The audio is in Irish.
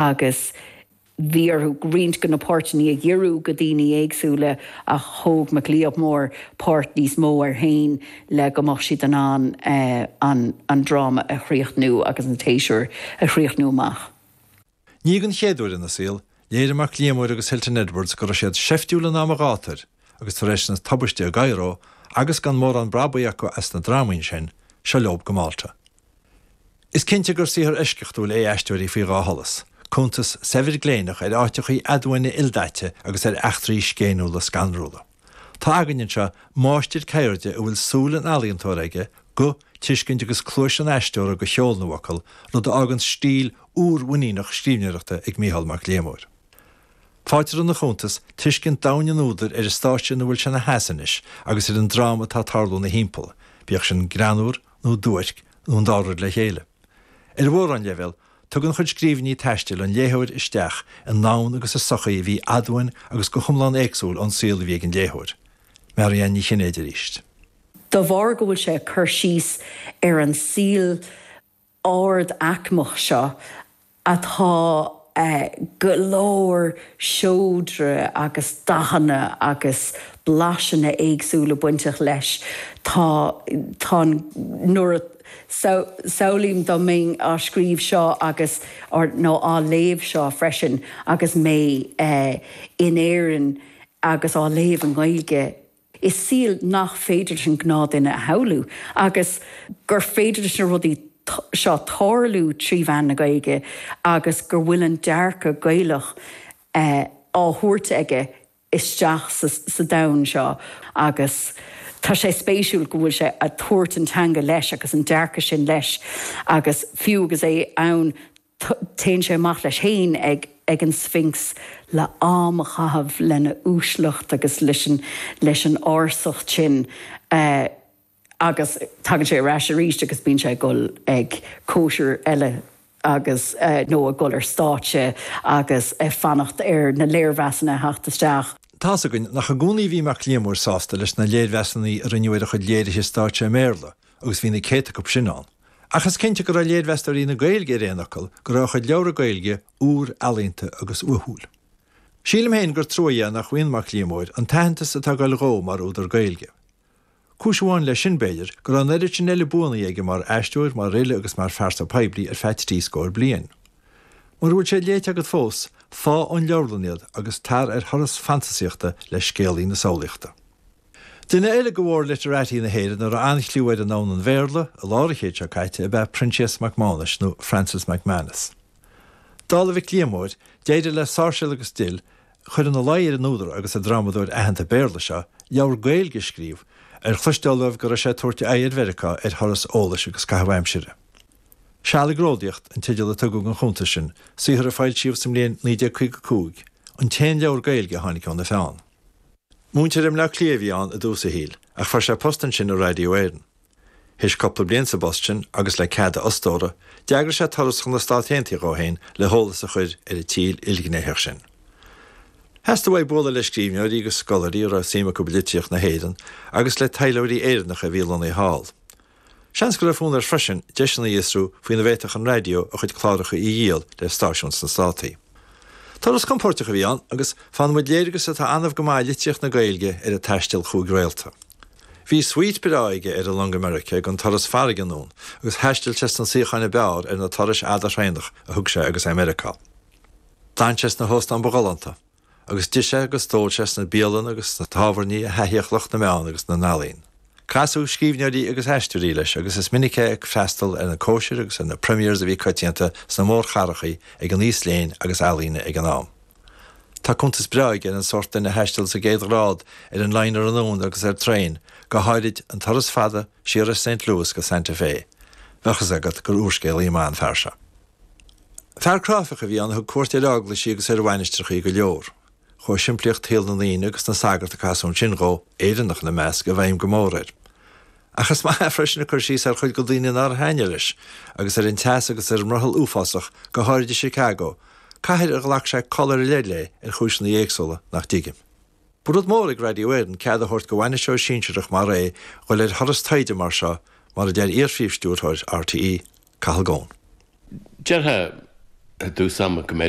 agus bhí orthu roinnt de na páirteanna a dhíriú go dhaoine éagsúla ach thóg Mac Liammóir páirt níos mó air féin le go mbeadh siad in ann an dráma a chríochnú agus an séasúr a chríochnú amach. Ní gon chéad uair ina saol, léirigh Mac Liammóir agus Hilton Edwards go raibh siad seiftiúil in am an ghátair agus tar éis na tubaiste i gCairo agus gan mórán brabaigh acu as na drámaí ansin, seo leob go Malta. Is cinnte gur saothar eisceachtúil é Aisteoirí faoi Dhá Sholas, cuntas saibhir gléineach ar áiteachaí aduaine ildaite agus ar eachtraí scéiniúla scanrúla. Tá againn anseo máistir ceirde a bhfuil súil an ealaíontóra aige, guth, tuiscint agus cluais an aisteora go cheol na bhfocal, rud a fhágann stíl úr mhuiníneach scríbhneoireachta ag Micheál Mac Liammóir. Faightear ina chuntas tuiscint domhain an údair ar an stáitse ina bhfuil sé ina sheasamh anois agus ar an dráma atá ag tarlú ina thimpeall, bíodh sin greannmhar, nó duairc nó an dá rud le chéile. Ar mhórán leibhéal, tugann a chuid scríbhinní taistil an léitheoir isteach i ndomhan agus i sochaí a bhí aduain agus go hiomlán éagsúil ón saol a bhí ag an léitheoir. Marianne Ní Chinnéide arís. Dá bharr go bhfuil sé ag cur síos ar an saol ard-aicmeach seo atá go leor saibhreas agus dathanna agus blaiseanna éagsúla bainteach leis. Tá, tá an, nuair a, samhlaím dá mbeinn á scríobh seo agus, nó á léamh seo freisin agus mé in Éirinn agus á léamh i nGaeilge, Is saol nach féidir leis an ngnáthdhuine a shamhlú agus gur féidir leis na rudaí seo tarlú trí mheán na Gaeilge agus go bhfuil an dearcadh Gaelach á thabhairt aige isteach sa domhan seo agus tá sé spéisiúil go bhfuil sé a' tabhairt an teanga leis agus an dearcadh sin leis agus fiú agus é ann téann sé amach leis féin ag an Sphinx le am a chaitheamh lena uaisleacht agus leis an ársacht sin agus tagann sé ar ais arís agus bíonn sé ag dul ag cóisir eile agus, nó ag dul ar stáitse agus ag fanacht ar na léirmheasanna a theacht isteach. Tá's againn nach i gcónaí a bhí Mac Liammóir sásta leis na léirmheasanna a rinneadh ar a chuid léirithe stáitse i mBéarla, agus bhí na céadta acu sin ann, ach is cinnte go raibh léirmheastóirí na Gaeilge ar aon fhocal go raibh a chuid leabhra Gaeilge úr, ealaíonta agus uathúil. Sílim féin gur trua dhe nach bhfaigheann Mac Liammóir an t-aitheantas atá ag dul dhó mar údar Gaeilge. Cúis amháin leis sin, b'fhéidir, go raibh an oiread sin eile buanna aige mar aisteoir, mar fhile agus mar phearsa poiblí ar feadh trí scór bliain. Mura bhfuil siad léite agat fós, faigh ón leabharlann iad agus tar ar thuras fantasaíochta le scéalaí na samhlaíochta. Duine eile de mhór-literati na hÉireann a raibh an-chliú air i ndomhan an Bhéarla i lár an chéid seo caite ab ea Proinsias Mac Mánais, nó Francis McManus. Dála Mhic Liammóir, d'éirigh le Sáirséal agus Dill cur ina luí ar an údar agus an drámadóir aitheanta Béarla seo leabhar Gaeilge a scríobh, ar chloisteáil dóibh go raibh sé ag tabhairt a aghaidh ar Mheiriceá ar thuras eolais agus caitheamh aimsire. Seal ag Ródaíocht an teideal a tugadh ar an gcuntas sin, saothar a foilsíodh sa mbliain 1955, an t-aon leabhar Gaeilge a tháinig óna pheann. Múinteoir i mBleá Cliath a bhí ann i dtús a shaoil, ach fuair sé post ansin i Radio Éireann. Théis cupla bliain sa bpost sin, agus le cead a fhostóra, d'eagraigh sé turas chun na Stát Aontaithe dhó fhéin le heolas a chuir ar an tír ilghnéitheach sin. Theastaigh uaidh bualadh le scríbhneoirí agus scoláirí a raibh suim acu i litríocht na hÉireann, agus le taidhleoirí Éireannacha a bhí lonnaithe thall. Seans go raibh fonn air freisin deiseanna a fhiosrú faoina bhféadfadh an raidió a chuid cláracha a dhíol le stáisiúin sna Státaí. Turas compóirteach a bhí ann agus faigheann muid léargas atá annamh go maith i litríocht na Gaeilge ar an taisteal chúig réalta. Bhí svuít breá aige ar an long America gan turas farraige anonn agus thaistil sé sna suíocháin ab fhearr ar na turais fhada thraenach a thug sé agus é i Meiriceá. D'fhan sé sna hóstáin ba ghalánta. agus d'ith sé agus d'ól sé sna bialanna agus sna tábhairní a thaithíodh lucht na meán agus na n-ealaíon. Casadh scríbhneoirí agus aisteoirí leis agus is minic é ag freastal ar na cóisirí agus ar na premières a bhí coitianta sna mórchathracha ag an aos léinn agus ealaíne ag an am. Tá cuntas breá aige ar an sórt daoine a thaistil sa gcéad ghrád ar an liner anonn agus ar traein, go háirid an turas fada siar as Saint Louis go Santa Fé. Bheadh fhios agat gur úrscéalaí maith an fear seo. Fear cráifeach a bhí ann a thug cuairt ar eaglaisí agus ar mhainistreachaí go leor. Chuaigh simplíocht shaol na ndaoine agus na sagart a casadh ansin dhó, Éireannach ina measc, i bhfeidhm go mór air. Ach is maith freisin a chur síos ar chuid de na daoine nár thaitnigh leis, agus ar an teas agus ar an mbrothall uafásach, go háirid i Chicago, cathair ar ghlac sé col ar leith léi ar chúiseanna éagsúla nach dtuigim. Ba rud mór ag Radio Éireann cead a thabhairt do bhainisteoir sinsearach mar é dhul ar thuras taighde mar seo, mar a deir iar-phríomhstiúrthóir RTÉ, Cathal Goan. Déarfadh i dtús ama go mb'fhéidir